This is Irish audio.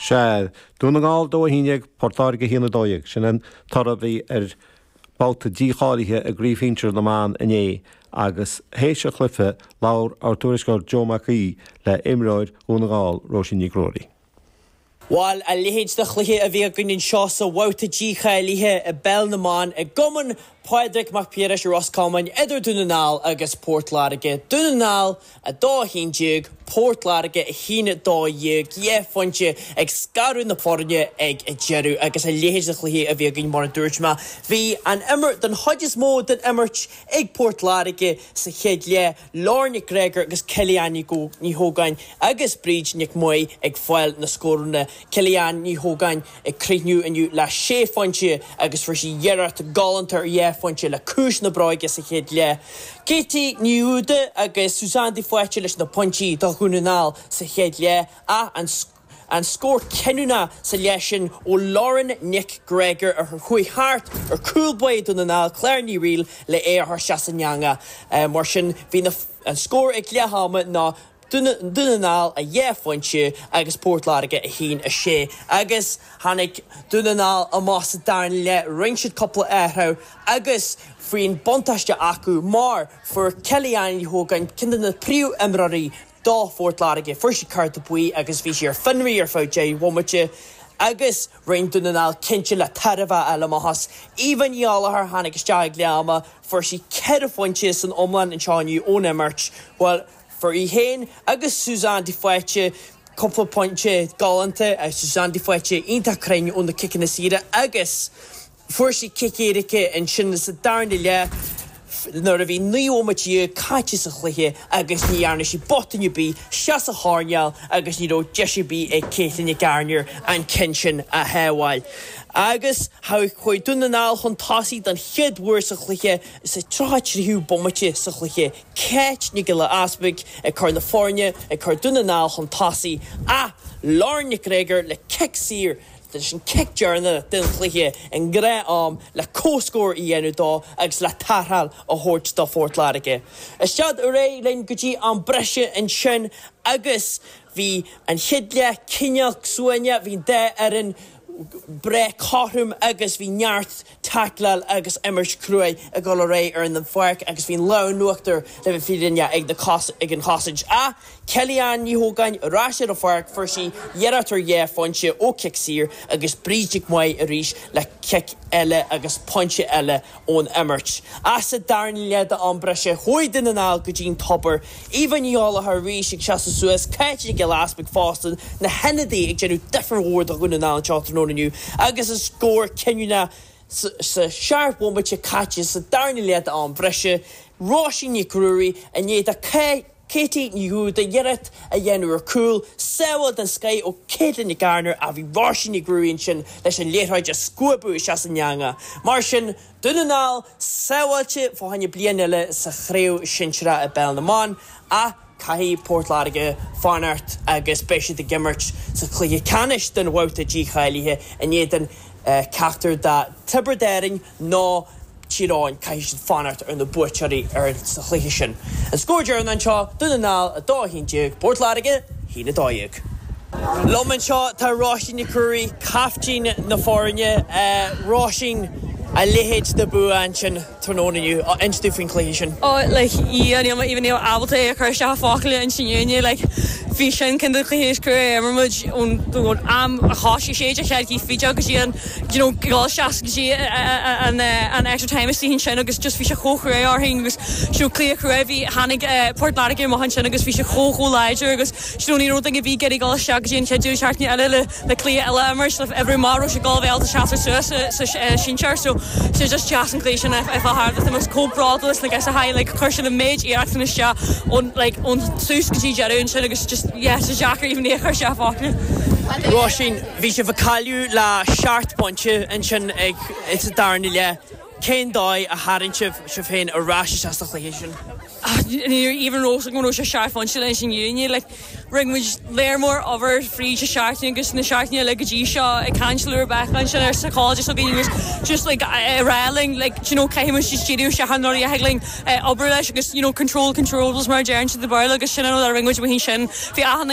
Sea, Dún na nGall 2 11 Port Láirge 1 12. Sin an toradh a bhí ar bhabhta dícháilithe i gcraobh shinsir na mban inné agus théis an chluiche labhair ár dtuairisceoir Joe Mac Aoidh le imreoir Dhún na nGall, Róisín Nic Ruairí. Bhuel, a leithéid de chluiche a bhí againn anseo sa bhabhta dícháilithe i bpeil na mban i gCumann Pádraig Mac Piarais i Ros Comáin idir Dún na nGall agus Port Láirge. Dún na nGall 2, 11, Port Láirge 1, 12, dhá phointe ag scaradh na foirne ag an deireadh agus a leithéid de chluiche a bhí againn mar a dúirt mé. Bhí an imirt, den chuid is mó den imirt, ag Port Láirge sa chéad leath, Lauren Nic Gréagóir agus Kelly-Anne Ní hÓgáin agus Bríd Nic Maith ag fáil na scóranna. Kelly-Anne Ní hÓgáin. Ag críochnú inniu le sé phointe agus fuair sí iarracht galánta ar dhá phointe le ciumhais na bróige sa chéad leath. Katie Ní Dhubhda agus Suzanne de Faoite leis na pointí do Dhún na nGall sa chéad leath ach an scór cinniúnach sa leath sin ó Lauren Nic Gréagóir a chuaigh thart ar chúl báire Dún na nGall, Claire Ní Fhrighil le é a chur isteach san eangach. Mar sin bhí an scór ag leath ama ná. Dún na nGall a dhá phointe agus Port Láirge a haon a sé agus tháinig Dún na nGall amach sa darna leath, rinne siad cúpla athrú agus bhí an buntáiste acu mar fuair Kellyanne Ní hÓgáin, ceann de na príomh-imreoirí do Phort Láirge, fuair sí cárta buí agus bhí sí ar fionraí ar feadh deich bhomaite agus rinne Dún na nGall cinnte le tairbhe a fháil amach as. Eva Ní Ghallchóir tháinig isteach ag leath ama, fuair sí ceithre phointe san iomlán anseo inniu ón imirt, bhuel, Fuair í féin agus Suzanne de Faoite cúpla pointe galánta, Suzanne de Faoite iontach cruinn ó na ciceanna saora agus fuair sí cic éirice ansin sa darna leath nuair a bhí naoi nóiméad déag caite sa chluiche agus ní dhearna sí botún ar bith, isteach sa choirnéal agus ní raibh deis ar bith ag Caitlín Nic Gairnéir an ceann sin a shábháil. Agus chuaigh Dún na nGall chun tosaigh don chéad uair sa chluiche sa tríocha tríú bomaite sa chluiche. Cáit Nic Giolla Easbuic ag cur na foirne ag cur Dún na nGall chun tosaigh ach Lauren Nic Gréagóir le cic saor leis an cic deireanach den chluiche i ngnáth am le comhscór a dhéanamh dó agus le tarrtháil a thabhairt do Phort Láirge. Isteach ar aghaidh linn go dtí am breise ansin agus bhí an chéad leath cineál suaimhneach, bhí an dá fhoireann breá cothrom agus bhí neart. taicleáil agus imirt cruaidh ag dul ar aghaidh ar an pháirc agus bhí an lámh in uachtar le bheith fírinneach ag na ag an chosaint ach Kelly Ann Ní hÓgáin ar ais ar an pháirc fuair sí iarracht ar dhá phointe ó chic saor agus Bríd Nic Maith arís le cic eile agus pointe eile ón imirt ach sa darna leath d'am breise chuaigh Dún na nGall go dtí an tobar Eva Ní Ghallchóir arís ag seasamh suas, Cáit Nic Giolla Easpaig fosta, na hionadaithe ag déanamh difear mór do Dhún na nGall anseo tráthnóna inniu agus an scór cinniúnach sin ceithre bhomaite caite sa darna leath d'am breise, Róisín Nic Ruairí i ndiaidh do Katie Ní Dhúda iarracht a dhéanamh ar chúl, sábháil den scoth ó Katelyn Gardner ach bhí Róisín Nic Ruairí ansin leis an liathróid a scuabadh isteach san eanga, mar sin Dún na nGall sábháilte fá choinne bliain eile sa chraobh shinsearach i bpeil na mban ach caithfidh Port Láirge fanacht agus beidh siad ag imirt sa chluiche ceannais don bhabhta dícháilithe in éadan ceachtar de Tiobraid Árann nó Tír Eoghain. Caithfidh siad fanacht ar na buaiteoirí sa chluiche sin. An scór deireanach anseo, Dún na nGall 2, 11, Port Láirge. 1, 12. Liom anseo tá Róisín Nic Ruairí, caiftín na foirne. Róisín, a leithéid de bhua ansin tráthnóna inniu, inis dom faoin chluiche sin. Ó like a Dhia níl mé even ábalta é a chur isteach i focail leis an fhírinne like bhí sin cinnte an cluiche is cruaidhe a d'imir muid ón am a thosaigh sé de chead go dtí an fhideog dheireanach you know dul isteach go dtí an extra time istigh ansin agus just bhí sé chomh cruaidh orainn agus you know cluiche cruaidh a bhí ann tháinig Port Láirge amach ansin agus bhí sé chomh chomh láidir agus you know ní raibh duine ar bith ag dul isteach go dtí an chéad deireadh seachtaine eile le cluiche eile a imirt le oibriú amach an raibh siad ábalta seasamh suas sa sinsear so tá sé just deas an cluiche sin a fháil thart tá mé chomh bródúil like as a high like chuir siad an méid iarracht sin isteach ón like ón tús go dtí deireadh ansin agus just yeah tá sé deacair even é a chur isteach i focail Róisín. Bhí sibh ag cailleadh le seacht bpointe ansin sa darna leath. Cén dóigh a tharraing sibh sibh féin ar ais isteach sa chluiche sin? Ní raibh even a fhios againn go raibh sé seacht bpointe leis an fhírinne. Rinne muid lear mór obair fríd na seachtainí agus na seachtainí eile go dtí seo ag caint le Rebecca ansin an psychologist againn agus just ag rá linn like d'you know caithfidh muid just díriú isteach ar rudaí a thig linn obair leis agus you know control controllables mar a deireann siad i Béarla agus sin an rud a rinne muid. Bhí achan.